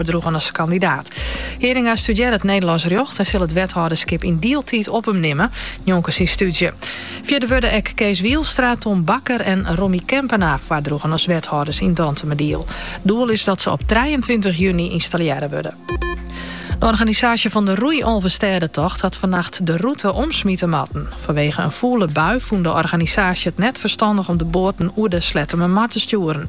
foardroegen as kandidaat. Heringa studearret Nederlands rjocht en sil it wethâlderskip yn dieltiid op him nimmen, njonken syn stúdzje. Fierder wurde ek Kees Wielstra, Tom Bakker en Romy Kempenaar foardroegen as wethâlders yn Dantumadiel. Doel is dat se op trijeentweintich juny ynstallearre wurde. De organisaasje fan de Roei Alvestêdetocht hat fannacht de rûte omsmite moatten. Fanwege in fûle bui fûn de organisaasje it net ferstannich om de boaten oer de Slettemermar te stjoeren.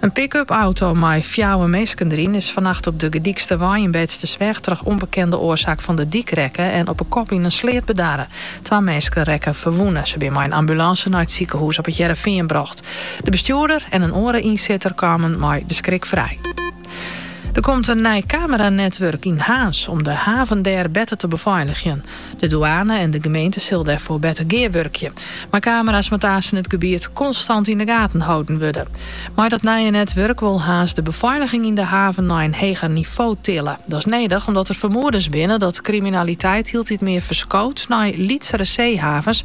In pick-up auto mei fjouwer minsken deryn is fannacht op de Gedyksterwei yn Beetstersweg troch ûnbekende oarsaak fan de dyk rekke en op 'e kop yn in sleat bedarre. Twa minsken rekke ferwûne. Se binne mei in ambulânse nei it sikehûs op It Hearrenfean brocht. De bestjoerder en in oare ynsitter kamen mei de skrik frij. Der komt in nij kameranetwurk yn Harns om de haven dêr better te befeiligjen. De douane en de gemeente sille dêrfoar better gearwurkje. Mei camera's moat aansten it gebiet konstant yn de gaten holden wurde. Mei dat nije netwurk wol Harns de befeiliging yn de haven nei in heger nivo tille. Dat is nedich omdat der fermoedens binne dat kriminaliteit hieltyd mear ferskoot nei lytsere seehavens